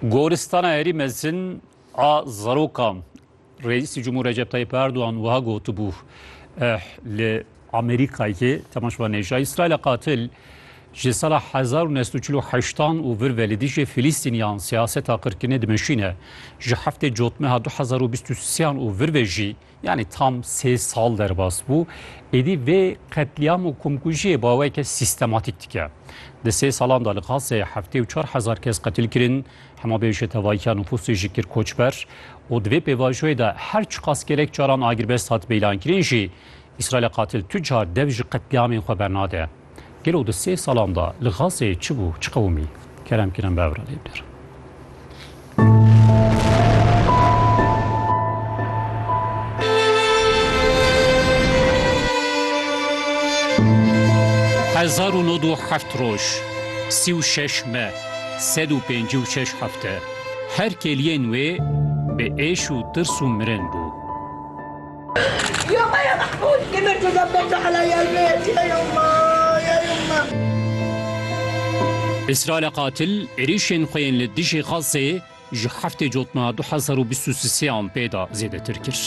Goristana herî mezin a zarokan Reîsî Cumhur Recep Tayyip Erdoğan wiha gotibû eh, li Amerîkayê temaşva nêja İsraîla qatil ji sala 1948an û vir ve li dijî Filîstîniyan siyaseta qirkirinê dimeşîne. Ji heftê cotmeha 2023an û vir ve jî Yanî tam sê sal derbas bû, êdî vê qetlîam û komkujiyê baweke sîstematîk dike. Di sê salan de li Gazeyê heftê û çar hezar kes qetil kirin, hema bêje tevahiya nufûsê jî kir koçber û di vê pêvajoyê de her çiqas gelek caran agirbest hat beylankirin jî, Îsraîlê qatil tu car dev ji qetlîamên xwe bernade. Gelo di sê salan de li Gazeyê çi bû, çi qewimî? Kerem Kîran bi evra lê bidir. Hezar û nod û heft roj, sî û şeş me, sed û pêncî û şeş hefte, her kêliyên wê bi êş û tirs û mirin bû. Îsraîla qatil êrîşên xwe yên li dijî Xazzê ji heftê cotna du hezar û bîst û sean pê de zêdetir kir.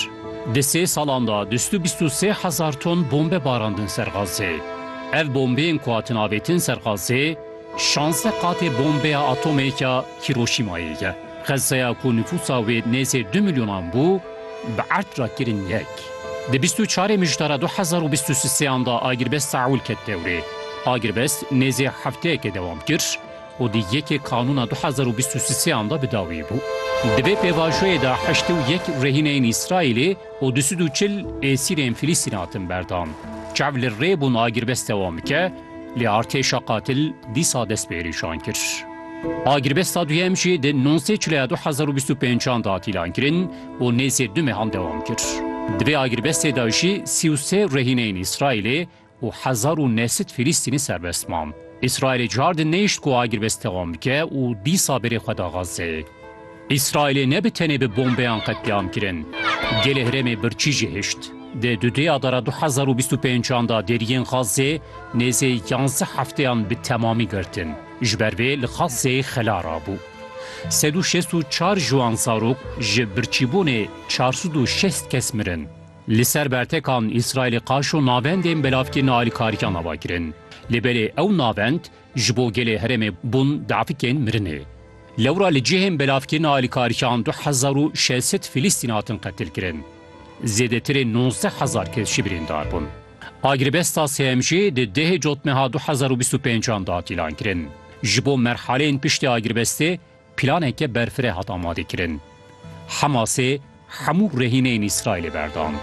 Di sê salan de du sed û bîst û sê hezar ton bombe barandin ser Xazzê. Ev bombeyên ku hatin avêtin ser Xazzê şazdeh qatê bombeya atomê ya Hîroşîmayê ye. Xezeya ku nifûsa wê nêzê du milyonan bû, bi erd re kirin yek. Di bîst û çarê Mijtara du hezar û bîst û sêan de agirbest Saûl ket dewrê. Agirbest nêzê hefteyekê dewam kir û di yekê Kanûna du hezar û bîst û sêan de bi dawî bû. Di vê pêvajoyê de heşt û yek rehîneyên Îsraîlê û du sed û çil êsîrên Filîstîn hatin berdan. Çav li rê bûn agirbest dewam bike, Lê artêşa qatil dîsa dest bi êrîşan kir. A girbesta duyem jî di nûzdeh Çilaya du hezar û bîst û pêncan de hat îlan kirin û nêzî du mehan dewam kir. Di vê agirbestê de jî sî û sê rehîneyên Îsraîlê û hezar û neh sed Filîstînî serbest man. Îsraîlê cihar di nehişt ku agirbest dewam bike û dîsa berê xwe da Xazzeyê. Îsraîlê ne bi tenê bi bombeyan qetlîam kirin. Gelê herêmê birçî jî hişt. Di du dêyadara du hezar û bîst û pêncan de deriyên Xazzê nêzê yanzdeh hefteyan bi temamî girtin. Ji ber vê li Xazzê xela rabû. Sed û şêst û çar ciwan zarok ji birçîbûnê çar sed û şêst kes mirin. Li ser bertekan Îsraîlê qaşo navendên belavkirina alîkariyan ava kirin. Lê belê ew navend Ji bo gelê herêmê bûn defikên mirinê. Lewra li cihên belavkirina alîkariyan du hezar û şeş sed Filistîn hatin qetilkirin. Zêdetirê nozdeh hezar kes jî birîndar bûn. A girebesta sêyem jî di dehê cotmeha du hezar û bîst û pênc an de hat îlankirin. Ji bo merhaleyên piştî a girebestê planeke berfireh hat amadekirin. Hemasê hemû rehîneyên Îsraîlê berdan.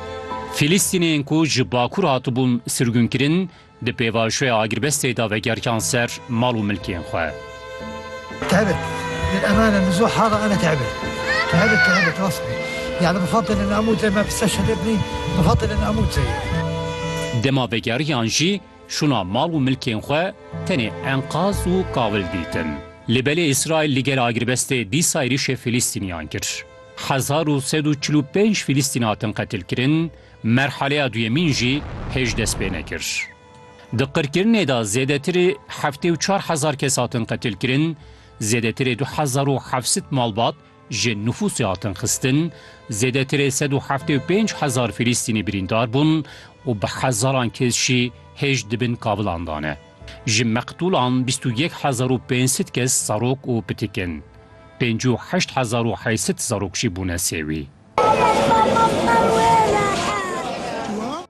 Filistîniyên ku ji bakur hatibûn sirgûnkirin Di pêvajoya agirbestê de vegerkiyan ser mal û milkên xwe. Dema vegeriyan jî şûna mal û milkên xwe tenê enqaz û kawil dîtin. Lê belê Îsraîl li gel agirbestê dîsa êrîşê Fîlîstîniyan kir. Hezar û sed û çil û pênc Fîlîstîn hatin qetilkirin, Merhaleya duyemîn jî hêj dest pê nekir. Di qirkirinê de zêdetirê heftê û çar hezar kes hatin qetilkirin, zêdetirê du hezar û heft sed malbat ji nufûsê hatin xistin, zêdetirê sed û heftê û pênc hezar Filîstînî birîndar bûn û bi hezaran kes jî hêj di bin kavilan de ne. Ji meqtûlan bîst û yek hezar û pênc sed kes serok û pitik in. Pêncî û heşt hezar û heyset zarok jî bûne sêwî.